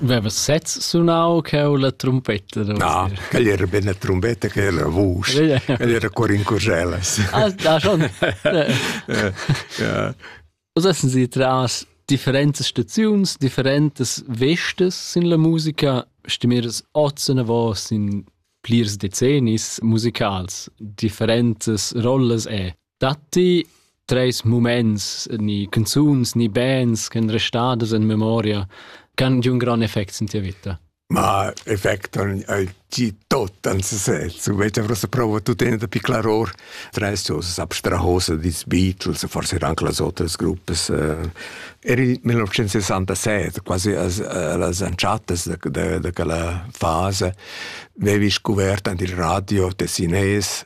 Veva sez sunau cheu la trumpetta? No, quel era be una trombetta che era vusch. Quel era cor in curgelas. Ah, da schon. Was essen Sie tras differentes staziuns, differentes vestes in la musica? Stimmires oz eine Voz in plirs decennis musicals, differentes rolles e? Datti treis muments ni canzuns ni bands ch'en restadas en memoria che han giu un gran effect sin tia vita? Ma effect ei ti tot an sesez. U vete vrosa prova tutene da piclar or treis cosas abstrahose dis Beatles, forse anche las otras gruppe. Eh, eri 1967, quasi las anciatas de, de, de quella fase, avevi scoperto an il radio tessinese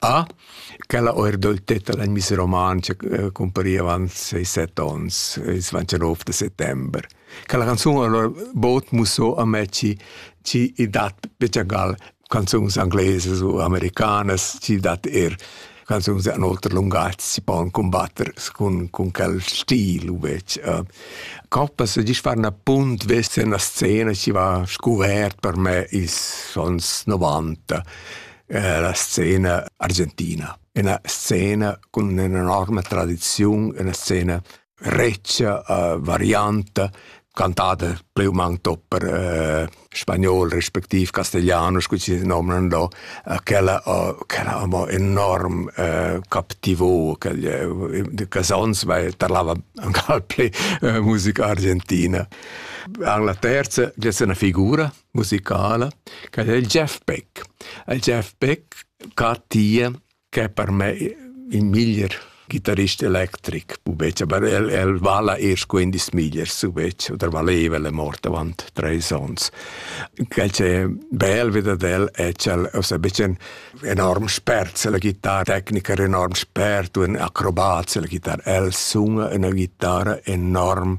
Ah, quella oirdoltetta da Miss Romantscha cumpariva avant seis set ons, ils vantanov da settember. Quella canzun allura bod musso a me chi chi i dat pichagall canzuns anglesas u americanas, chi dat eir canzuns in oter lungatg si pon cumbatter cun, cun quel stil uvec. Uh, Coppas gist far na punt vesse na scena chi va scuvert per me ils ons 90. La scena argentina. Üna scena cun ün'enorma tradiziun, üna scena retscha, varianta, cantada plü u mang tot per spagnol respectiv castigliano, scu chi nomnan do. Quella quella amo enorm captivò, ch'els ons vai tarlava ancal plü musica argentina. En la terza gess üna figura musicala ch'el è il Jeff Beck. Il Jeff Beck ca tia ch'è per me il miglier ghitarrist electric, pubetg, aber el, el vala eir scu ün dis miglier, subetg, oder valeva, el è mort avant treis ons. Quel ch'è bel ved ad el è ch'el ossa be ün enorm spert, la chitarra, tecniker enorm spert, un acrobat, la chitarra. El suna üna chitarra enorm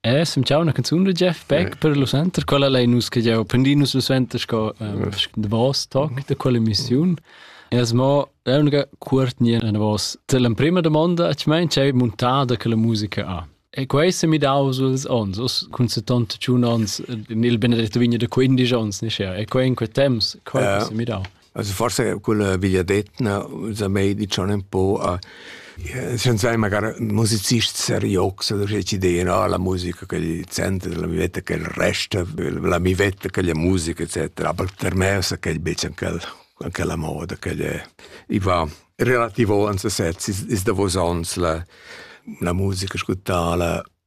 Eh, sem ciao una canzun da Jeff Beck per lo center, quella lei nus che jau prendi nus lo center sco um, the boss talk da quella emissiun. E as mo l'unica cuortnia na vos te l'emprima domanda a mein c'è montata che la musica ha. E questa mi dau suls ons, us cun 71 ons, nel benedetto vigno da 15 ons, ne sia. E quei in quei temps, quei yeah. mi dau. Also forse quella vegliadetna sa mei dicion un po a schon sai magari musicist seriox oder ci de no la musica che gli center la mi vetta che il resto la mi vetta che la musica eccetera aber per me sa che bisschen quel anche la moda che gli i va relativo ans sets is is da vos ans la la musica ascoltala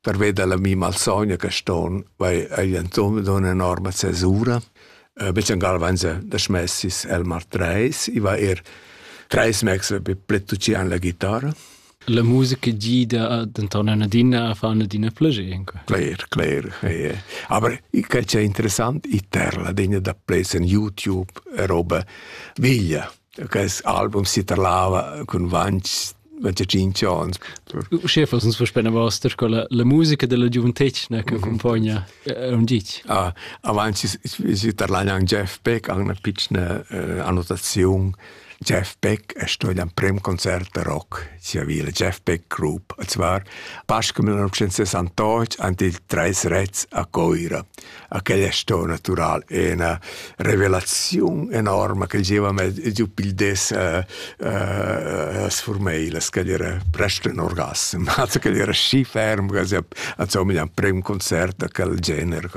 Pervei dalla mi malsogna che ston, vai ei entochen dunna enorma cesura. Uh, Bechengal van se da smessis el mar treis, i va er treis mexle per pletucian la chitarra. La musica gida denton adina a far adina plagir. Cler, cler. Eh. Aber che c'è interessant, i terla degna da play in YouTube, roba veglia. Quest album si tarlava cun vans 25 ans. Uschè fals uns verspena vasta sco la, la musica della giuventetgna che accompagna un gic. Ah, avanti si tarlagna an Jeff Beck an una piccina eh, annotazione. Jeff Beck è stato ein prem concert de rock sia vila Jeff Beck Group, und zwar Pascal 1968 an die Dreis Rets a Coira. a quella stoa natural e üna revelaziun enorma ch'el gieva mez giu pil des a a sfurmei la scadira prest in orgasm also quel era schi ferm quasi also mi ein prem concert da quel gener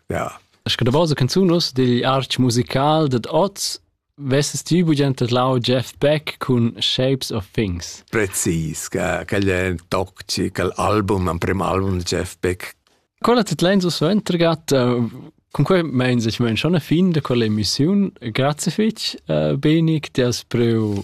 ja Es que da basa canzunos digl arch musical dad oz Vesses ti bugen tedlau Jeff Beck cun Shapes of Things? Precis, quel è toxic, l'album, l'emprim album di Jeff Beck. Quella tedlein so suentergat, con quei meins ich mein schon ein fin de quella emissiun. Grazie fitch, Benik, ti has preu